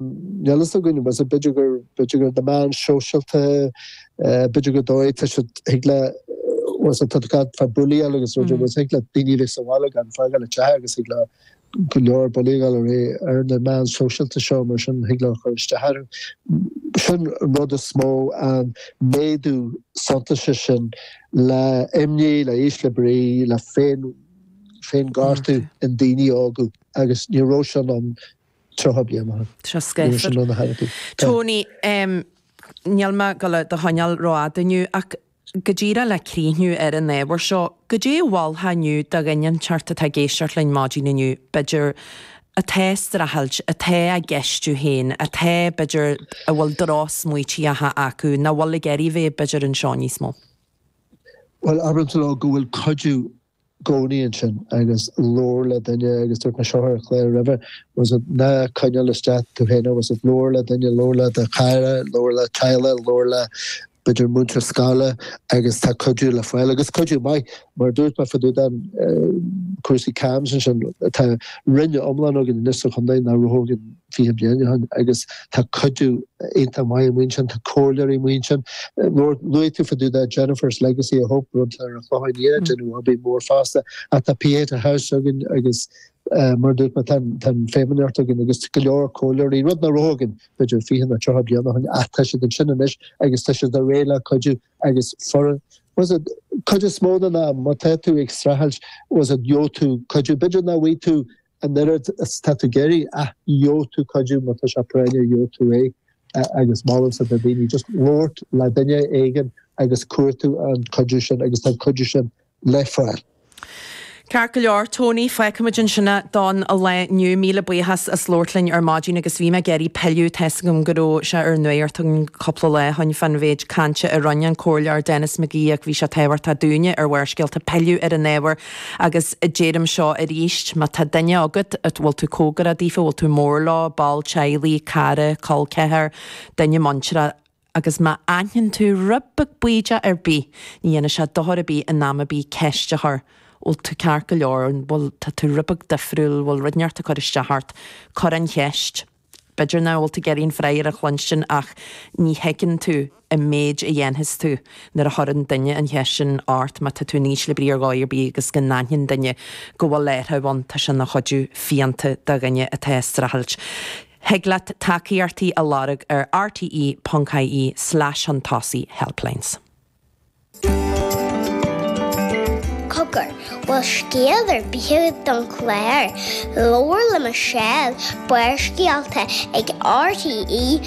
níl fhios againn, was it b'fhéidir gur, b'fhéidir gur na meáin shóisialta, b'fhéidir go dtig, tá siad, thig le, was it tá siad ag gabháil fá bully-áil agus rud éigin, was thig le daoiní bheith sa bhaile gan fágáil a dteach agus thig le go leor bully-áil a bheith ar na meáin shóisialta seo mar sin thig leo cur isteach ar an, sin an rud is mó an méadú suntaise sin le imní, le ísle brí, le féin, féinghortú i ndaoiní óga agus ní raibh sin ann 30 bliain ó shin. Seo scéal fir. Tony, Níl mé ag dul i do choinneáil rófhada inniu, ach go díreach le críochnú ar an ábhar seo, goidé a mholfá inniu do dhuine inteacht atá ag éisteacht linn maidin inniu, b'fhéidir, atá ag streachailt, atá á gceistiú féin, atá, b'fhéidir, a bhfuil drochsmaoitíocha acu, nach bhfuil ag éirí bheith, b'fhéidir, anseo níos mó? Bhuel, abróinnse leo go bhfuil cuidiú gcónaí ansin agus labhair le duine agus dúirt mé, seo ar an chlár roimhe, was it, ná coinnigh isteach duit féin é, was it, labhair le duine, labhair le do chara, labhair le do theaghlach, labhair le b'fhéidir múinteoir scoile agus tá cuidiú le fáil agus cuidiú maith mar dúirt mé fá dtaobh de chúrsaí CAMHS ansin tá Roinn iomlán againn anois sa chontae nach raibh againn 20 bliain ó shin agus tá cuidiú iontach maith amuigh ansin, tá comhairleoirí amuigh ansin, luaigh tú fá dtaobh de Jennifer's Legacy of Hope, rud atá ag déanamh obair mhór fosta, ach tá Pieta House againn agus mar a dúirt mé tá an Feidhmeannacht againn agus go leor comhairleoirí, rud nár raibh againn b'fhéidir 20 nó 30 bliain ó shin, ach tá siad ansin anois agus tá siad réidh le cuidiú agus an chuid is mó den am má tá tú ag streachailt was it gheobhaidh tú cuidiú b'fhéidir nach bhfaighidh tú an oiread is atá tú ag iarraidh, ach gheobhaidh tú cuidiú, má tá sé práinneach gheobhaidh tú é agus molaimse do dhaoiní just labhairt le duine éigin agus cuartú an cuidiú sin agus tá an cuidiú sin le fáil. Ceart go leor, Tony, fágfaimid ansin é don lá inniu, míle buíochas as labhairt linn ar maidin agus bhí mé ag iarraidh pilleadh tá's agam go raibh sé ar an nuacht ansin cúpla lá ó shin fán mhéid cainte a roinn an Comhairleoir Denis McGee ach bhí sé tábhachtach dúinne ar Bharrscéalta pilleadh ar an ábhar Agus deirim seo arís, má tá duine agat, a bhfuil tú cóngarach daofa, a bhfuil tú mór leo, ball teaghlaigh, cara, col ceathar, duine muinteartha, agus má aithnionn tú rud beag bídeach ar bith, ní dhéanfaidh sé dochar ar bith in am ar bith ceist a chur, bhfuil tú ceart go leor, an bhfuil, tá tú rud beag difriúil, bhfuil rud inteacht ag cur isteach ort, cur an cheist. B'fhéidir nach bhfuil tú ag iarraidh an freagra a chluinstin ach ní thuigeann tú an méid a dhéanfas sé nuair a chuireann duine an cheist sin ort. Má tá tú in ísle brí ar dhóigh ar bith agus go n-aithníonn duine go bhfuil fadhb ann, tá sin ina chuidiú fiánta do dhuine atá ag streachailt. Thig leat tacaíochtaí a lorg ar rte.ie slash chun tosaigh helplines. Cogar, bhfuil scéal ar bith don chlár. Labhair le Michelle, Barrscéalta ag RTÉ.ie.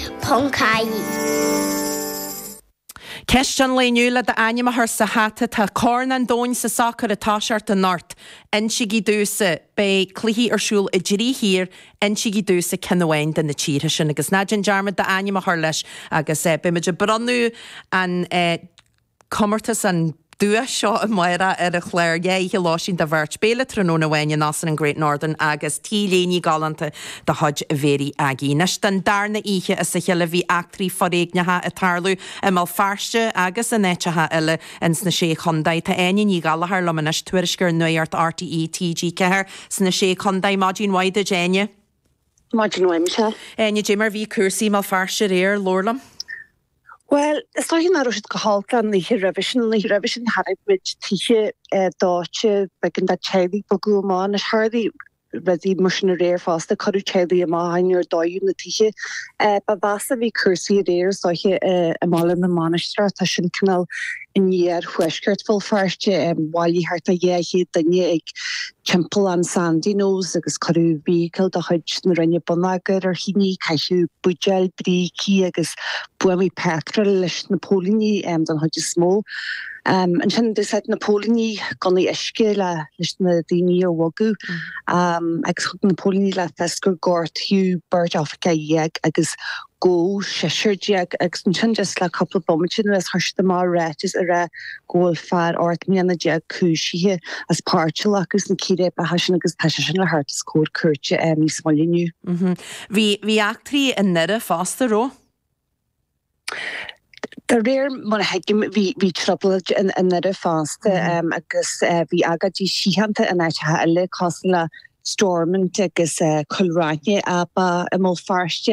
Ceist an lae inniu le d'ainm a chur sa hata, tá corn an domhain sa sacar ag toiseacht anocht. Insígí domhsa. Beidh cluichí ar siúl i dtrí thír Insígí domhsa ceann amháin de na tíortha sin agus ná déan dearmad d'ainm a chur leis agus beidh muid ag bronnadh an comórtas, an duais seo amárach ar an chlár dhá oíche lóistín do bheirt, béile tráthnóna amháin in Óstán an Great Northern agus T-léine galánta de chuid Mhary Aggie. Anois don darna oíche as a chéile bhí eachtraí foréigneacha ag tarlú i mBéal Feirste agus in áiteacha eile ins na Sé Chondae. Tá Áine Ní Ghallchóir liom anois, tuairisceoir Nuacht RTÉ, TG4. Sna Sé Chondae, Maidin mhaith duit Áine. Maidin mhaith Michelle. Áine, Dé mar bhí cúrsaí i mBéal Feirste aréir, labhair liom. Bhuel, is dóiche nach raibh siad chomh holc an oíche roimhe sin, an oíche roimhe sin chonaic muid tithe dóite, b'éigean do theaghlaigh bogadh amach, anois tharlaigh rudaí mar sin aréir fosta, cuireadh teaghlaigh amach ach níor dódh na tithe. Ba mheasa a bhí cúrsaí aréir is dóiche i mBaile na Mainistreach, tá sin cineál in iarthuaisceart Bhéal Feirste. Bhailigh thart ar 200 duine ag timpeallán Sandyknowes agus cuireadh vehicle de chuid na Roinne Bonneagair ar thine. Caitheadh buidéil, brící agus buamaí petrol leis na póilíní den chuid is mó. Ansin d'úsáid na póilíní gunnaí uisce leis na daoine a bhogadh agus thug na póilíní le fios gur gortaíodh beirt oifigeach dhéag agus gabhadh seisear déag agus ansin just le cúpla bomaite anuas chuir siad amach ráiteas ag rá go bhfuil fear ocht mbliana déag cúisithe as páirt a ghlacadh sna círéibeacha sin agus tá sé sin le theacht os comhair cúirte níos moille inniu. Bhí eachtraí i nDoire fosta raibh? De réir mar a thuigim bhí trioblóid i nDoire fosta agus bhí agóidí síochánta in áiteacha eile cosúil le Stormont agus Cúil Raithin ach ba i mBéal Feirste.